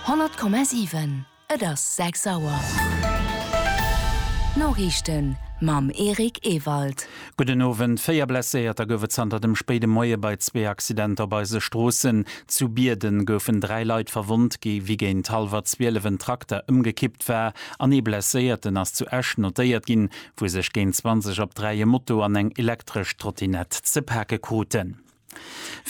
100,7 Et ass 6 Auer. D'Noriichten mam Eric Ewald. Gudden Owend. Véier Blesséierter gouf et zanter dem spéide Moie bei zwee Accidenter op eise Stroossen. Zu Bierden goufen dräi Leit verwonnt, wéi géint hallwer 12 en Trakter ëmgekippt war an ee Blesséierten ass zu Esch notéiert ginn, wou sech géint 20 op 3 e Moto an eng elektresch Trottinett ze pake kruten.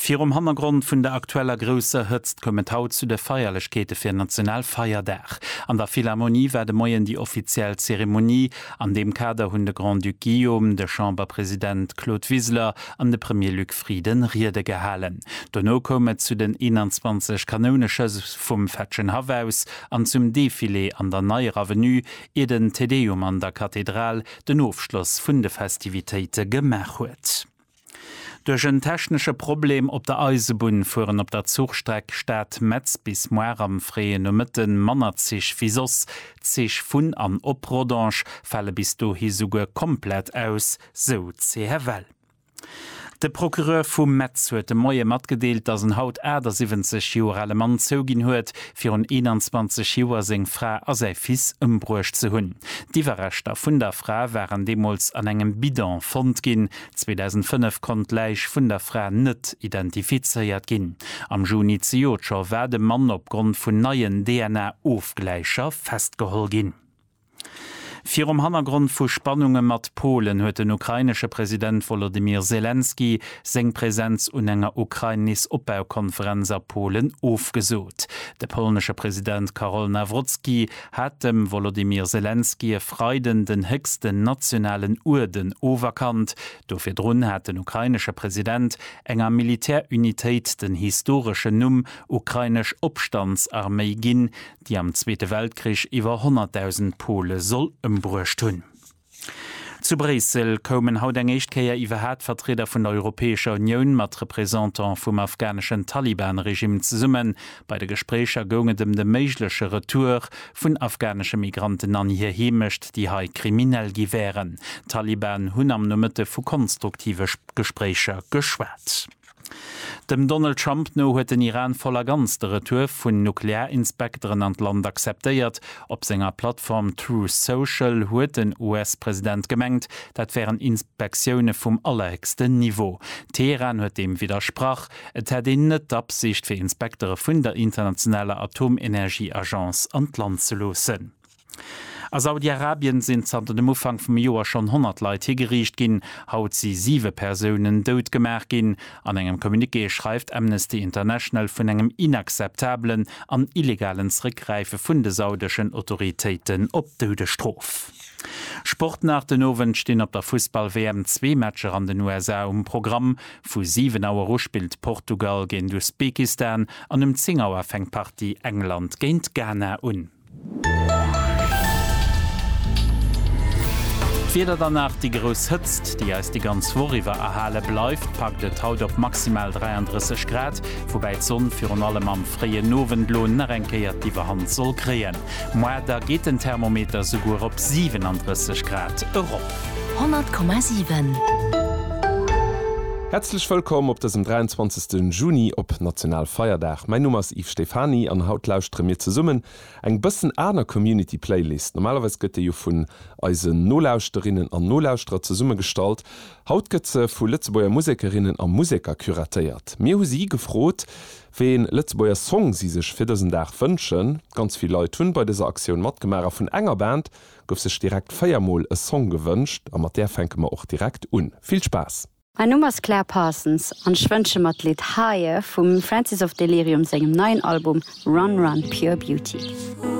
Virum Hannergrond vun der aktueller grousser Hëtzt koum et haut zu de Feierlechkeete fir Nationalfeierdag. An der Philharmonie war de Moien déi offiziell Zeremonie. An deem Kader hunn de Grand-Duc Guillaume, de Chamberpresident Claude Wiseler an de Premier Luc Frieden Riede gehalen. Dono koum et zu den 21 Kanouneschëss vum Fetschen Haff aus an zum Defilé an der Neier Avenue, ier den Te Deum an der Kathedral den Ofschloss vun de Festivitéite gemaach huet. Duerch en technesche Problem op der Eisebunn fueren op der Zuchstreck Stad-Metz bis muar am fréie Nomëtte manner Zich wéi soss. D'Zich vun an op Rodange fale bis dohi souguer komplett aus, sou d'CFL. De Procureur vu Metz huet de Moie matgedeelt, datt en haut 78 Joer ale Mann zouginn huet, virun 21 Joer seng Fra a säi Fils ëmbruecht ze hunn. D'Iwwerreschter vun der Fra waren deemools an engem Bidon fonnt ginn. 2005 konnt d'Läich vun der Fra net identifizéiert ginn. Am Juni zejoert scho war de Mann opgrond vun neien DNA-Ofgläicher festgeholl ginn. Virum Hannergrond vu Spannunge mat Polen huet den ukrainesche President Wolodymyr Selenskyj seng Presenz un enger Ukrainis-Opbaukonferenz a Polen ofgesot. De polnesche President Karol Nawrocki hat dem Wolodymyr Selenskyj e Freiden den héchsten nationalen Uerden oferkannt. Do virdrun hat den ukrainesche President enger Militärunitéit den historeschen Numm Ukrainesch Opstandsarméi ginn, déi am Zweete Weltkrich iwwer 100.000 Pole soll ëmbruecht hunn. Zu Bréissel koumen haut eng éischt Kéier iwwerhaat Vertrieder vun der Europäescher Unioun mat Représentant vum afghaneschen Taliban-Regime zesummen. Bei de Gespréicher goung et ëm de méigleche Retour vun afghanesche Migranten an hir Heemecht, déi hei kriminell gi wären. D'Taliban hunn am Nomëtte vu konstruktive Gespréicher geschwat. Dem Donald Trump no huet den Iran voll a ganz de Retour vun Nuklearinspekteren an d'Land acceptéiert. Op senger Plattform Truth Social huet den US-President gemengt, dat wären Inspektioune vum allerhéchsten Niveau. Teheran huet deem widdersprach, et hätt een net d'Absicht, fir Inspektere vun der internationaler Atomenergieagence an d'Land ze loossen. A Saudi-Arabien sinn zanter dem Ufank vum Joer schonn 100 Leit higeriicht ginn. Haut si siwe Persounen dout gemaach ginn. An engem Communiqué schreift Amnesty International vun engem inakzeptabelen an illegalen Zeréckgräife vun de saudeschen Autoritéiten op d'Doudesstrof. Sport nach, Den Owend stinn op der Fussball-WM zwee Matcher an den USA um Programm. Vu 7 Auer u spillt Portugal géint Usbekistan an um 10 Auer fänkt d'Partie England géint Ghana un. D'Wieder dann nach, déi grouss Hëtzt, déi eis déi ganz Woch iwwer erhale bleift, packt et haut op maximal 33 Grad, woubäi d'Sonn virun allem am fréien Owend elo nach eng Kéier d'Iwwerhand soll kréien. Moi, da geet den Thermometer souguer op 37 Grad erop. 100,7. Häerzlech wëllkomm op dësem 23. De Juni op Nationalfeierdag. Mäin Numm ass Yves Stephany an haut lauschtere mir zesummen eng bëssen aner Community Playlist. Normalerweis gëtt déi jo vun eisen Nolauschterinnen an Nolauschterer zesummegestallt. Haut gëtt se vu Lëtzebuerger Musekerinnen a Museker curatéiert. Mir hu si gefrot, wéi een Lëtzebuerger Song si sech fir dësen Dag wënschen. Ganz vill Leit hunn bei dëser Aktioun matgemaach a vun enger Band gouf sech direkt 4 mol e Song gewënscht. A mat där fänke mer och direkt un. Vill Spaass! Mäin Numm ass Claire Parsons an ech wënsche mer d'Lidd Higher vum Francis of Delirium sengem neien Album Run Run Pure Beauty.